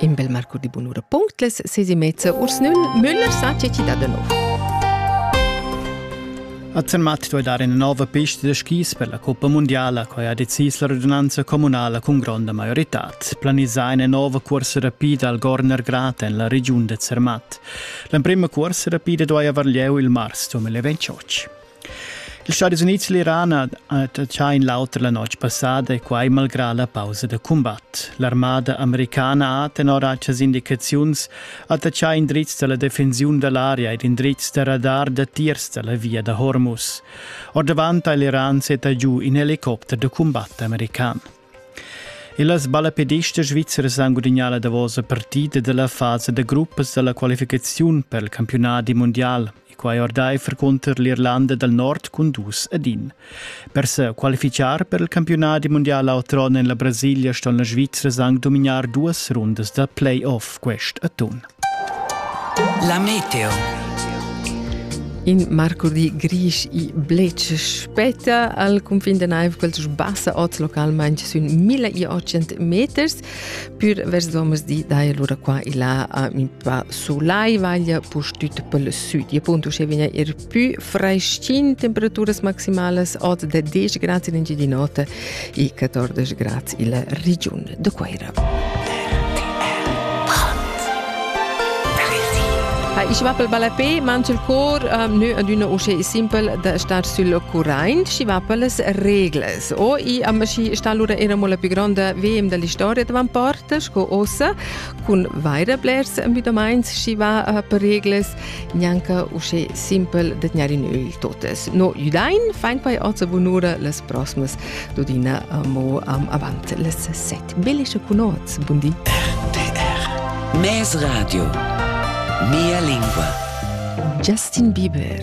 In bel marcur di bunura punctles sesi mezza urs nun Müller sa ce ci da de nov. A Zermatt doi dar ina nova pista da skis per la Coppa Mondiala, quai ha decis la radunanza comunala cun gronda maioritad. Planisà ina nova corsa rapida al Gorner Grat en la regiun da Zermatt. L'emprima corsa rapida doi aver lieu il mars 2028. Ils Stadis Unids e l'Iran attacchain l'auter la notg passada e quai malgrà la pausa da cumbat. L'armada americana ha tenor actas indicaziuns attaccà indrizs da la defensiun da l'aria ed indrizs da radar datiers da la via da Hormuz. Ordavant ha l'Iran setta giu in helicopter da cumbat american. E las balapedistas svizzeras han gudagnà la davosa partida della fase da gruppas dalla qualificaziun per il campionat mundial. e quai ordaifer cunter l'Irlanda dal Nord cun dus ed in. Per se qualifichar per il campiunat mundial outrun en la Brasilia ston la Svizra anc dominar duas rundas da play-off quest atun. La meteo. In marcurdi grisch i blec spetta al cunfin da naiv quels sbassa oz localmain sün 1800 meters Pür vers domesdi dai lura qua e là a mi pa sulai vaglia pus tut pel süd. E appunto uschè vegna er pü freschin temperaturas maximalas od da 10 grads in Engiadin'Ota e 14 grads illa regiun da Cuaira. Ha ich va pel balapé, manch il cor um, nö ad üna usche simple da star sül Currain, schi va pellas reglas. O i amaschi sta lura era mo la più gronda VM della storia davan parte sco ossa cun vaira blers müdamaints chi va uh, per regles gnanca usche simpel de gnare in öl totes. No judain fein quai also bunura les prosmas dudina uh, mo am avant les set. Belische cunoz, bundi. RDR Mes Radio Mia lingua Justin Bieber